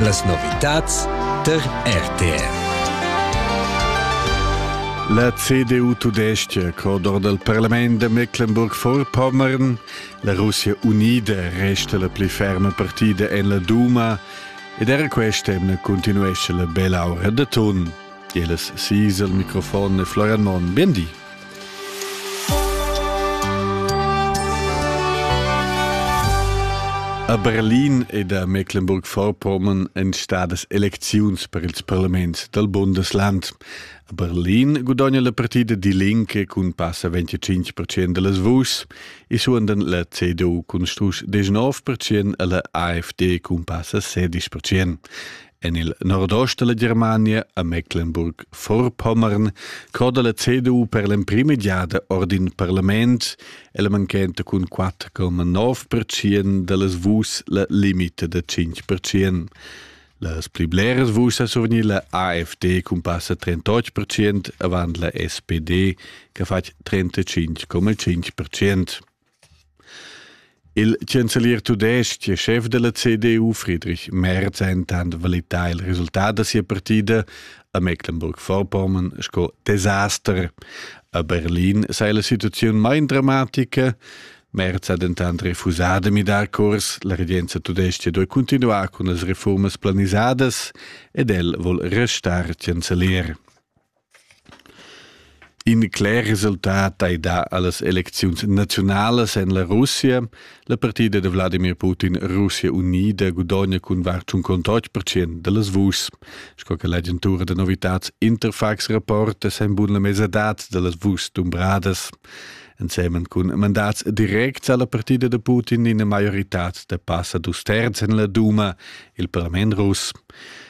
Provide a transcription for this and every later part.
Las novitads tar RTR. La CDU tudestga codor dal parlament da Mecklenburg-Vorpommern, la Russia unida resta la pli ferma partida en la Duma ed era quest'emna continuesce la bella aura da ton. Jeles Siesel, Mikrofon e Florian Monn, bien di. A Berlin ed a Mecklenburg-Vorpommern èn stadas elecziuns per ils parlaments dal Bundesland. A Berlin gudogna la partida Die Linke cun passa 25% da las vuschs e suondan la CDU cun strusch 19% e la AfD cun passa 16%. En il nordost della Germania, a Mecklenburg-Vorpommern, coda la CDU per l'emprima giada ord in parlament e la manchenta cun 4,9% dallas vus la limite da 5%. Las pli bleras vus a survgnir la AFD cun passa 38% avant la SPD, che fa 35,5%. Il chancelier tudestg e schef della CDU Friedrich Merz ha intant valità il resultat da sia partida a Mecklenburg-Vorpommern sco desaster. A Berlin sei la situaziun mein dramatica. Merz ha dentant refusà da midar curs. La regenza tudestga duai continuar cun las reformas planisadas ed el vol restar chancelier. In cler resultat ei dà allas elecziuns naziunalas en la Russia. La partida da Wladimir Putin Russia unida gudogna cun var tschun contotg percent dallas vuschs. Sco che l'agentura da novitads Interfax rapporta, san bun la mesadad dallas vuschs dumbradas. Ensemen cun mandats directs alla partida da Putin ina maioritad da passa dus terz en la Duma, il parlament russ.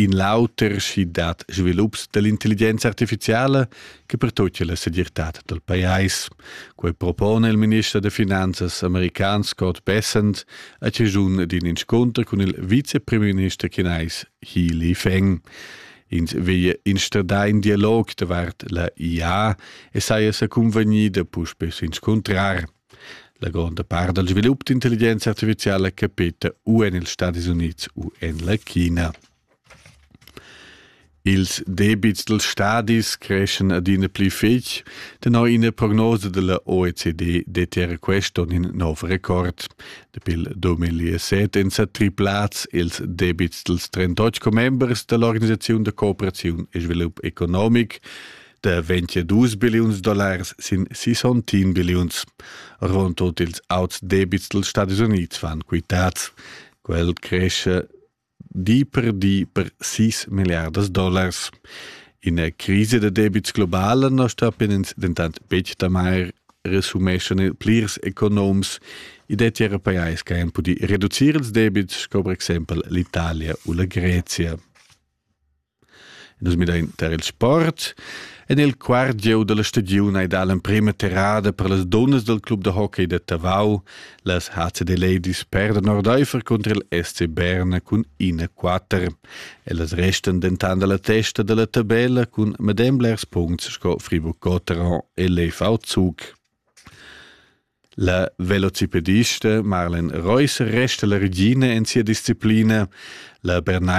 In l'auter schi dat svilups dell'intelligenza artificiala che pertutga la segirtad del pajais. Quei propone il minister de finanzas american Scott Bessent a cigiun d'in inscunter cun il vicepremier chinais He Li Feng. Ins veglia instradar in dialog davart la IA e saja sa convegnida puspe s'inscuntrar. La gronda part dal svilup d'intelligenza artificiala capeta u en ils Stadis Unids u en la China. Ils debits dals stadis creschan adina pli fitg. Tenor ina prognosa da la OECD dettia quest onn in nov record. Dapi il 2007 èn sa triplads ils debits dals 38 commembers da l'organisaziun da cooperaziun e svilup economic. da 22 billiuns dollars sin 61 billiuns. Rund tut ils auts debits dels Stati Units van quitats. Quel cresce di per di per 6 milliardas dollars. In crisi da debits globala non sta penens dentant betg da mai resumeschan il plirs economs i detti era pajais che han pudi reducir ils debits, come per exempel l'Italia u la Grezia. Nus midein tar il sport. En il quart gieu dalla stagiun ei dà l'emprema terrada per las dunnas dal club da hockey da Tavau. Las HCD Ladies perdan ordeifer contro il SC Berna cun 1-4. Ellas restan dentant alla testa dalla tabella cun medem blers punts sco Friburg Cotteron e l'EV Zug. La velocipedista Marlen Reus resta la regina en sia disciplina. La Bernai